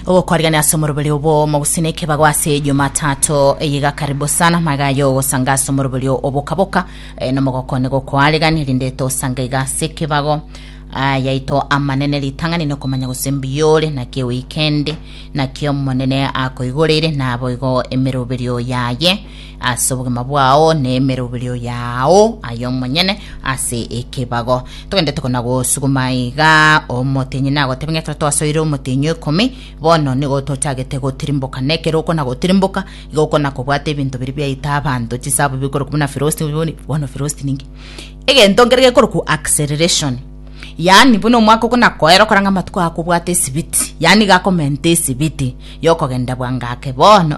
ogokwarigania ase omoroberi obo mogusina ekebago ase jumatatu eyiga karibu sana magayo ogosanga ase omoroberi obokaboka eh, nomogokone gokwarigania rinde tosanga iga ase ekebago Ah, yaito amanene ritang'ani nokomanya gose mbiyore naki weekend naki omonene akoigoreire naboigo emeroberio yaye ase obogima bwao na emeroberio yao aye omonyene ase ekebago. Togendete kona gosuguma iga omotenyi nagotebe ng'a ekero twasoire omotenyi oikomi bono nigo tochagete gotirimboka na ekero okona gotirimboka igo okona kobwata ebinto biria biaita abanto chisabu bikorokwa buna velocity boni bono velocity ninki egento nkere gekorokwa acceleration yaani buna omwaka okona koera okora ng'a amatuko ago akobwata esibiti yaani iga akomenta esibiti ya okogenda bwango ake bono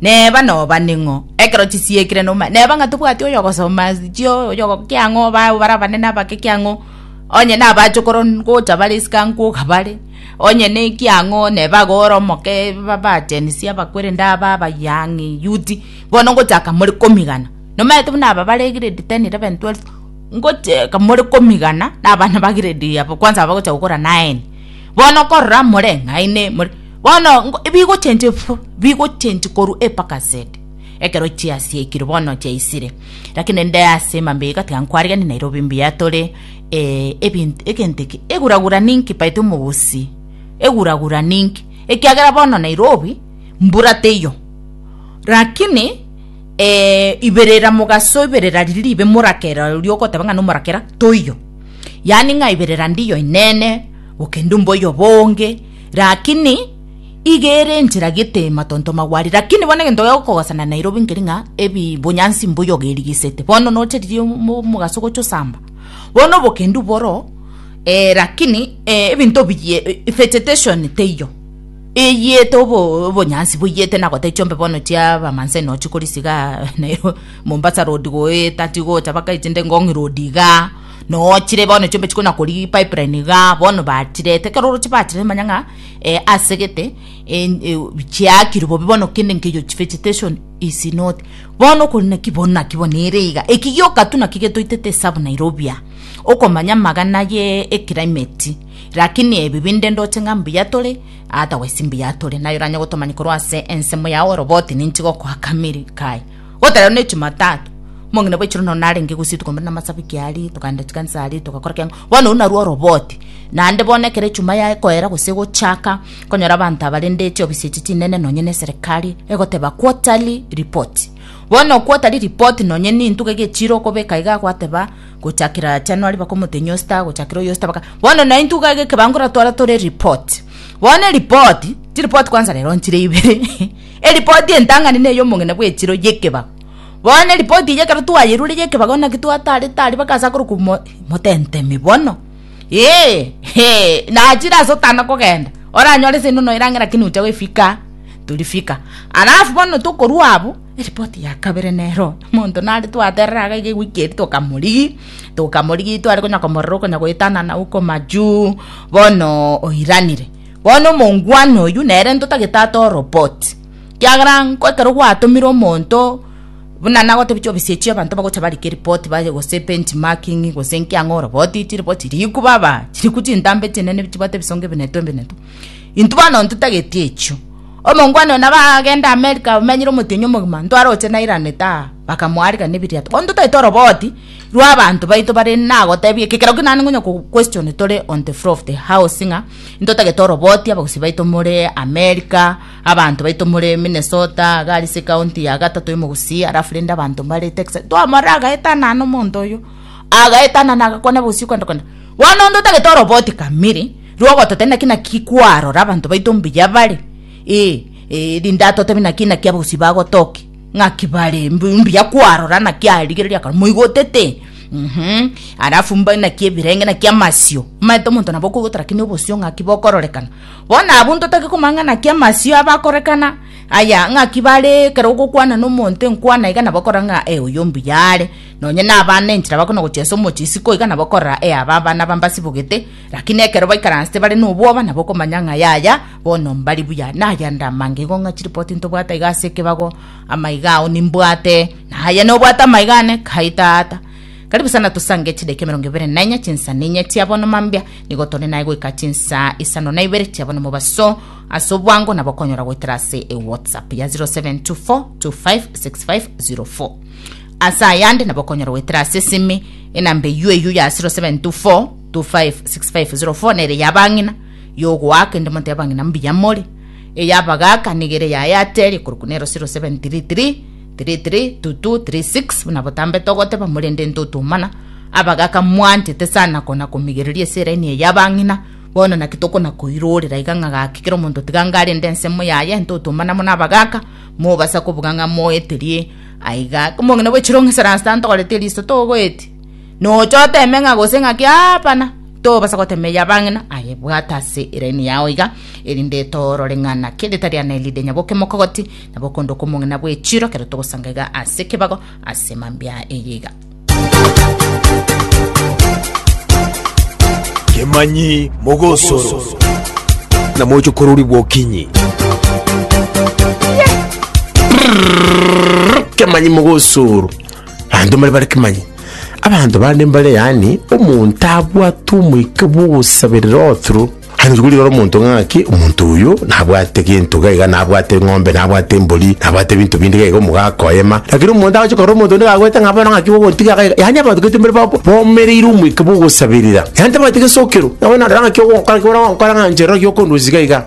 Neba nobane ng'o ekero chisiekire noma, neba ng'a tobwati oyogosoma chio oyogo kia ng'o bao bara abanene abake kia ng'o onye na abachokoro ngocha bare isiko aa nkoga bare, onye ne kia ng'o neba iga ore omoke ba bachenisi abakweri ndaba abayia ang'e yuti, bono ngochaka more komigana. Nomerete buna aba bare grade ten, eleven, twelve, ngocheka more komigana na abana ba grade abo kwanza abagocha gokora nine, bono korora more ng'aini more. Bono ngo- bigochenchwa efu- bigochenchwa korwa Epakaseti, ekero chiasiekirwe bono chiaisire. Lakini inde ase emambia eye gatiga nkwariganie Nairobi mbuya tore eh, ebinto egento eke eguragura ninki baito omogusi eguragura ninki ekiagera bono Nairobi mbura teiyo lakini eh, iberera mogaso iberera riria ribe morakera oria ogoteba ng'a nomorakera toiyo yaani ng'a iberera ndiyo inene gokenda omboyo bonge. Rakini iga ere enchera gete matonto magwari. Rakini bono egento gekogosana Nairobi nkeri ng'a ebi bonyansi mbuya ogerigesete. Bono nocharirie omo omogaso gocha osamba. Bono obokendu boro eh rakini eh ebinto biye eh vegetation teiyo. Eyete obo obonyansi boiyete na gotee chiombe bono chia ba Maasai no chikorisigaa Nairobi Mombasa road goeta tigocha baka echinde Ngong road igaa. Nochire bono chiombe chikona kori pipeline iga bono bachirete ekero oroche bachirete manya ng'a eh, asegete eh, eh, chiakirwe bobe bono kende nkeyo vegetation is not bono okori naki bono naki bono ere iga eki gioka tu naki getoitete esabu Nairobi aa okomanya magana ye eclimate lakini ebi binde ndoche ng'a mbuya tore otherwise mbuya tore naye oranye gotomanya korwa ase ensemo yao oroboti ninchi gokoa kamiri kai Gotara rero ne Jumatatu, omong'ina bwa echiro nonya narenge gose rituko mbere namasabiki aria, tokaenda chikanisa aria togakora kiang'o, bono oyio narwo oroboti. Naende bono ekero echuma yaye ekoera gose egochaka, okonyora abanto abarende chiofisi echi chinene nonya ne eserekari, egoteba quarterly report. Bono quarterly report nonya ne entuga iga echiro okobeka iga gwateba gochakera January mpaka omotenyi o star gochakera oyo o star mpaka, bono na entuga iga ekebango eratwara tore ereport. Bono ereport, chireport kwanza rero nchire ibere. Eripoti entang'ani ney'omong'ina bw'echiro y'ekebago. Bono eripoti eyio ekero twayerure y'ekebago naki twatarete aria bagase akorokwa mo, motentemi bono. Ee, ee, nachire ase otana kogenda, oranyore seino noira ang'e lakini ocha goefika torifika. Alafu bono tokorwa abwo, eripoti ya kabere nero, omonto nare twaterera iga iga ewiki eria tokamorigia, tokamorigia tware konya komorora okonya goetanana huko majuu, bono oiranire. Bono omongwana oyio nere ntotagete atoe oroboti, ekiagera ekero gwatomire omonto buna nagotebia chiofisi echio abanto bagocha barike ripoti baye gose bench marking gose inki ang'e oroboti chiriboti chiriku baba chiriku chintambe chinene chibwate ebisongo ebinetwe ebinetwe intwe bono ntotagete echio. Omongwana oyo nabo agende America amenyere omotienyi omogima ntware oche nairanete aa bakamoarigania ebiriato bono ntotaete oroboti rwa abanto baito bare nagotebie ekero naende nkonya kogu question tore on the floor of the house ng'a Intotagete oroboti abagusii baito more America, abanto baito more Minnesota, gari ase ecounty ya gatato y'omogusii, alafu rende abanto mbare Texas. Twamorora agaetana na omonto oyo, agaetana na agakwana abagusii okwenda kwenda. Bono intotagete oroboti kamiri, rwogototebia naki naki kwarora abanto baito mbuya bare, ee, ee, rinde atotebi naki naki abagusii bagotokia. ng'aki bare mbu- mbuya kwarora naki arigereria akaro moigotete Mhm. alafu mba naki ebirenge naki amasio maete omonto nabo okoigota lakini obosio ng'aki bokororekana bono abwo ntotake komanya ng'a naki amasio abakorekana aya ng'aki bare ekero ogokwana na omonto enkwana iga nabo okora ng'a e oyo mbuya are nonye na abana enchera bakona gochia ase omochie isiko iga nabo okorora e aba abana aba mbasibogete lakini ekero baikaransete bare na obwoba nabo okomanya ng'a yaya Bono mbari buya naya nda amange igo ng'a chiripoti ntobwate iga ase ekebago, amaiga ao nimbwate, na aye nobwate amaiga ane, kai tata. Karibu sana tosange chidakika emerongo ebere na enye chinsa na enye chia bono mambia, nigo tore naye goika chinsa isano na ibere chia bono mobaso, ase obwango nabo okonyora goetera ase ewhatsapp ya 0724256504. Ase ayande nabo okonyora goetera ase esimi enamba eyio eyio ya 0724256504 nere ya abang'ina, y'ogoaka inde moteba ng'ina mbuya more, ey'abagaaka nigo ere yaye ateria korokwa nero 0733 332236 buna botambete ogoteba morende ntotomana abagaaka mwanchete sana kona komigereria ase eraini eye y'abang'ina bono naki tokona koirorera iga ng'a gaki kera omonto tiga ngare inde ensemo yaye ntotomana buna abagaaka mobasa kobuga ng'a moeterie aiga komong'ina bwe chirong'esa rasta ntogorete eriso togoeti Nocha oteme ng'a gose ng'aki aapana, tobasa gotema eya bang'ina, aye bwata ase eraini yao iga, erinde etoorore ng'a naki eritari ane ride nyaboke mokogoti, nyaboke onde okomong'ina bw'echiiro, ekero togosanga iga ase ekebago ase mambia eye iga. Kemanyi mogosoro na mochokorori bw'okinyi. Kemanyi mogosoro abanto mbare bare kimanye abanto bande mbare yani omonto abwate omoika bwogosaberera oturu hano chikori rora omonto ng'aki omonto oyo nabwate gento gaiga nabwate ng'ombe nabwate embori nabwate ebinto binde gaiga omogaka oyema lakini omonto agocha korora omonto onde gagwete ng'a bono ng'aki ogotiga gaiga yani abanto gete mbare babo bomereire omoika bwogosaberera yani tabwati gesokero nabo narora ng'aki ogokora ki bono ogokora ng'a inche rora giokondusia gaiga